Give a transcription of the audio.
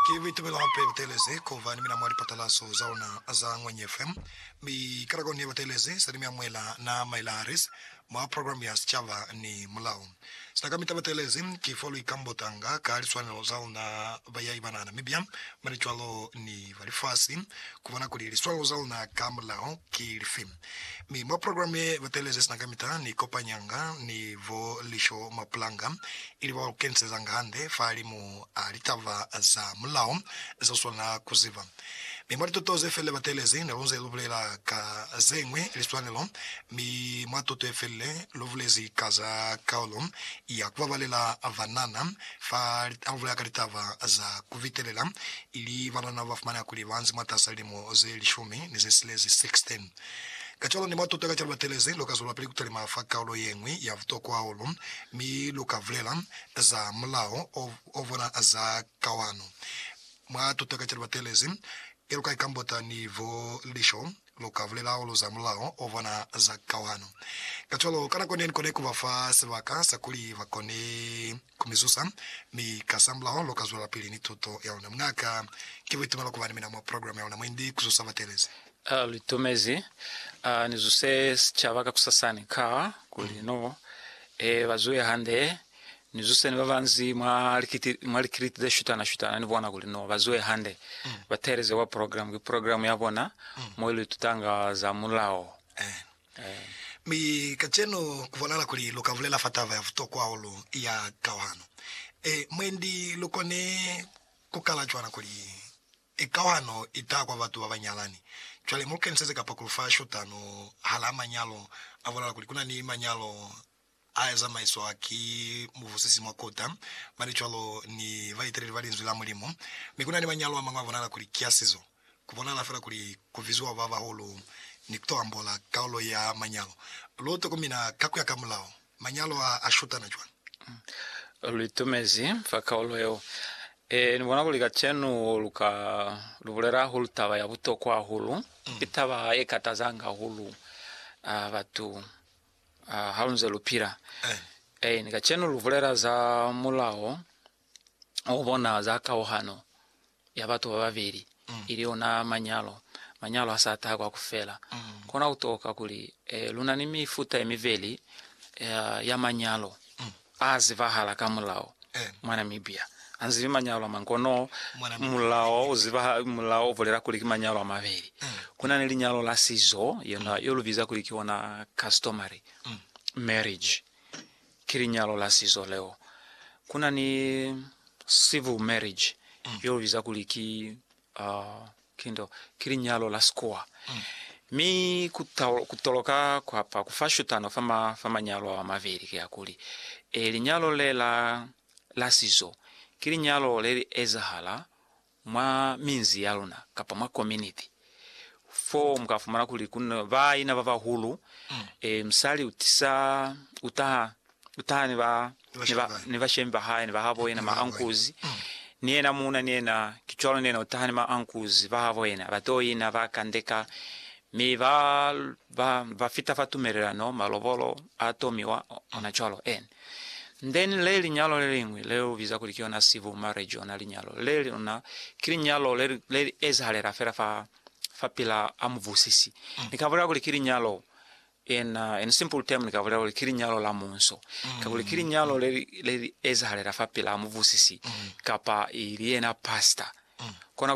Ki buitumelo hape butelezi kuba ni mina mwa lipatalaso za ona za Ngwenyi FM. Mi kalakoni ye batelezi seli mia Mwela na Myla Harris mwa program ya Sicaba ni Mulao. Sina ka mita batelezi ki fo lwi kambotanga ka liswanelo za ona ba yai bana Namibia, mane cwalo ni ba lifasi, kubona kuli liswanelo za ona ka mulao ki lifi. Mi mwa program ye batelezi sina kamita ni kopanyanga ni bo Lisho Mapulanga ili ba lu kenisezanga hande fahalimu a litaba za mulao ze u swanela ku ziba. Mi mwa lituto ze felile batelezi ne lu nze lu bulela ka ze ñwi liswanelo, mi mwa tuto ye felile lu bulezi ka za kaulo ya ku babalela banana fa habulela ka litaba za ku bitelela ili banana ba fumaneha kuli ba nzi mwatas'a lilimo ze lishumi ni ze silezi, 16. Kacwalo ni matuta ka ca lu batelezi, lu ka zwelapili ku talima fa kaulo ye ñwi ya butokwa hahulu, mi lu ka bulela za mulao o bona za kawano mwa tuto ka ca lu batelezi, ye lu ka i kambota ni bo lisho Lu ka bulela hahulu za mulao o bona za kauhano. Kacwalo, ka nako ne ni kone ku ba fa sibaka sa kuli ba kone ku mi zusa, mi kasamulaho lu ka zwelapili ni tuto ya luna. Muña'ka, ki buitumelo ku ba ni mina mwa programe ya luna mwendi ku zusa batelezi. A lu itumezi a ni zuse sicaba kakusasani ka kuli no e ba zuhe hande Ni zuseni babanzi mwa likiliti ze shutana-shutana, ni bona kuli no ba zuhe hande, ba teeleze kwa program, ki program ya bona mo ilu itutanga za Mulao. Mi kacenu ku bonala kuli lu ka bulela fa taba ya butokwa hahulu ya kauhano. Mwendi lu kone ku kala cwana kuli, Kauhano i taha kwa batu ba ba nyalani. Cwale mu lu keniseze kapa ku lu fa shutano hala manyalo. A bonala kuli ku na ni manyalo A ya zamaiswa ki mubusisi mwa kota, mane cwalo ni baeteleli ba Linzwi la Mulimu. Mi kuna ni manyalo amañwi a bonala kuli ki a sizo. Ku bonala fela kuli ku biziwa babahulu ni kuto ambola kaulo ya manyalo. Lu tokomina ka kuya ka mulao manyalo a a shutana cwani? Lu itumezi fa kaulo yeo. Ee, ni bona kuli kacenu lu ka lu bulela hahulu taba ya butokwa hahulu. Ki taba ye katazanga hahulu batu Ah, halunze lupila. Eh, ni kacenu lubulela za mulao obona za kauhano ya batu bababeli, mm. ili ona manyalo, manyalo a sa taha kwa kufela. Mm. Kona kutoka kuli eh, luna ni mifuta yemibeli eh, ya manyalo. Mm. A zibahala ka mulao mwa Namibia. A nzibi manyalo a mañi kono mulao u ziba, mulao u bulela kuli ki manyalo a mabeli. Ku na ni linyalo la sizo, yona yo lu biza kuli ki ona customary marriage, ki linyalo la sizo leo. Ku na ni civil marriage, yo lu biza kuli ki Oh, ki nto, ki linyalo la sikuwa. Mi ku, ku toloka kwa pa, ku fa shutano fa, ma, fa manyalo ao a mabeli, ki hakuli, e, linyalo le la, la sizo, ki linyalo le li ezahala mwa minzi ya luna, kapa mwa kominiti. Fo mu ka fumana kuli ku na baina ba bahulu, e, musali u tisa, u taha Ku taha ni ba, ni ba, ni bashemi ba hae, ni ba habo yena, ma ankuzi, ni yena muuna, ni yena, ki cwalo, ni yena u taha ni ma ankuzi ba habo yena, ba to ina, ba kandeka, mi ba, ba, ba fita fa tumelelano, malobolo a tomiwa, ona cwalo. And then le linyalo le liñwi, le lu biza kuli ki yona civil marriage, ona linyalo le luna, ki linyalo le, le li ezahalela fela fa, fa pila a mubusisi. Ni ka bulela kuli ki linyalo. Ena, in simple term, ni ka bulela kuli ki linyalo la munso, kakuli ki linyalo le li, le li ezahalela fa pila mubusisi, kapa i li yena pastor. Kona